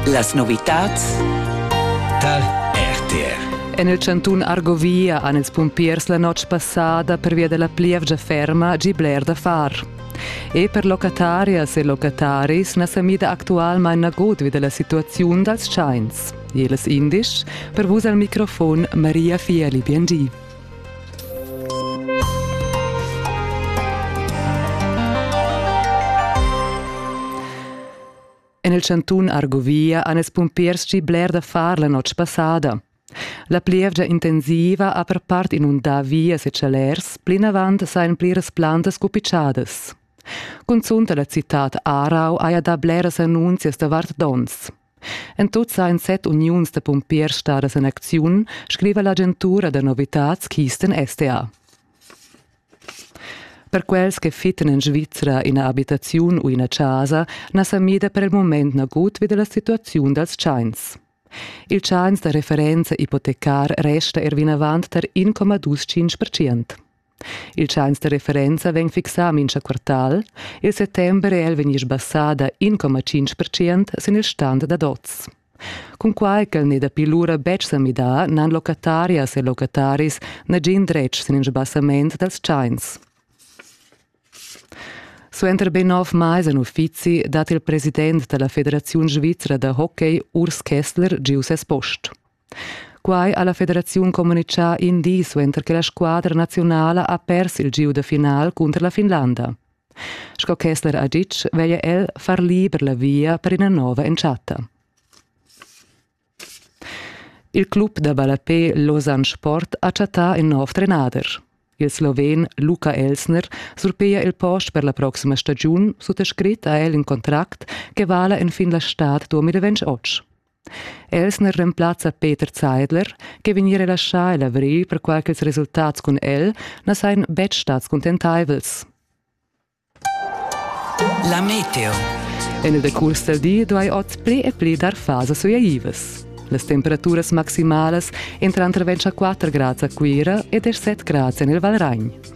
Las novitads tar RTR. En il chantun Argovia han ils pumpiers la notg passada pervia da la plievgia ferma gì bler da far. E per locatarias e locataris na sa mida actualmain nagut vi da la situaziun dals tschains. Jeles indisch, per vus al microfon Maria Fieli Biengi. En il chantun Argovia han ils pumpiers gì bler da far la notg passada. La plievgia intensiva ha per part inundà vias e chalers, plinavant sajan pliras plantas cupitschadas. Cunzunt la citad Aarau haja dà bleras annunzias davart donns. En tut sa en set uniuns da pumpiers stadas en acziun, scriva l'agentura da novitads Kisten STA. Per quels che fittan en Svizra ina abitaziun u ina chasa na sa mida per il moment nagut vi dalla situaziun dals tschains. Il tschains da referenza ipotecar resta er vinavant tar 1,25%. Il tschains da referenza vegn fixà a mincha quartal. Il settember è el vegni sbassà da 1,5% sin il stand dad oz. Cunquai ch'el n'è dapi lura betg sa midà, n'han locatarias e locataris nagin dretg sin il sbassament dals tschains. Suenter be nov mais en uffizi dat il president da la Federaziun svizra da hockey Urs Kessler giu ses post. Quai ha la federaziun communitgà in di suenter che la squadra naziunala ha pers il gieu da final cunter la Finlanda. Sco Kessler ha ditg, veglia el far liber la via per ina nova entschatta. Il club da ballapé Lausanne Sport ha chattà in nov trenader. Il sloven Luka Elsner surpiglia il post per la proxima stagiun sut scrit a el in contract che vala en fin la stad 2028. Els ne remplazza Peter Zeidler che vegni relaschà e lavrì perquai ch'ils resultats cun el na sajan betg stads cuntentaivels. La meteo. En il decurs dal di duai oz pli e pli dar fasas suaivas. Las temperaturas maximalas entran tranter 24 grads a Cuira e 17 grads en il Valragn.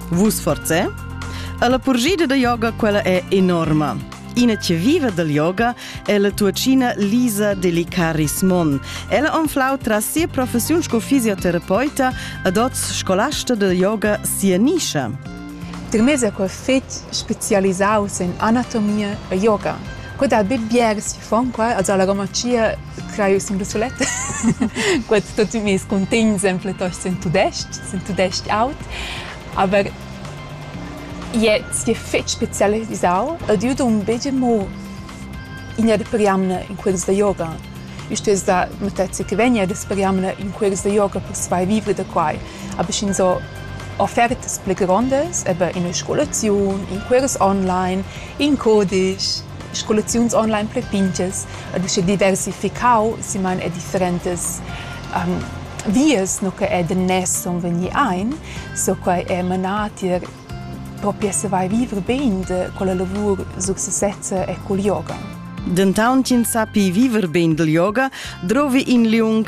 Vus forze? Alla purgida da yoga quella è enorma. Ina che vive del yoga è la tuacina Lisa Delicaris Mon. Ella anflau tras sia professiun sco fisioterapeuta ad oz scolasta del yoga sia nischa. Termesa quel fetg specialisaus en anatomia e yoga. Quod ha bit bier si Fan qua als ha la Romatschia craiu sin da sulet. Quels tutti mes cuntegns en plitost sin tudestg, sin tudestg aut. Aber jetzt je fetg spezialisau ed io dun begie mo ina de periamna in quels da yoga. Isto es da matezza che vegna da periamna in quels da yoga per survivere da quai. Aber schin so offertas pli grondas, eben in una scolaziun, in quels online, in codisch, scolaziuns online pli pintgas ed uschè diversificau siman e differentas um, vias no che è danness son vegni ein, so quai è manà tier proprio se vai vivre bene con la lavur successezza e col yoga. Dentaun chin sapi viver bene del yoga, drovi in liung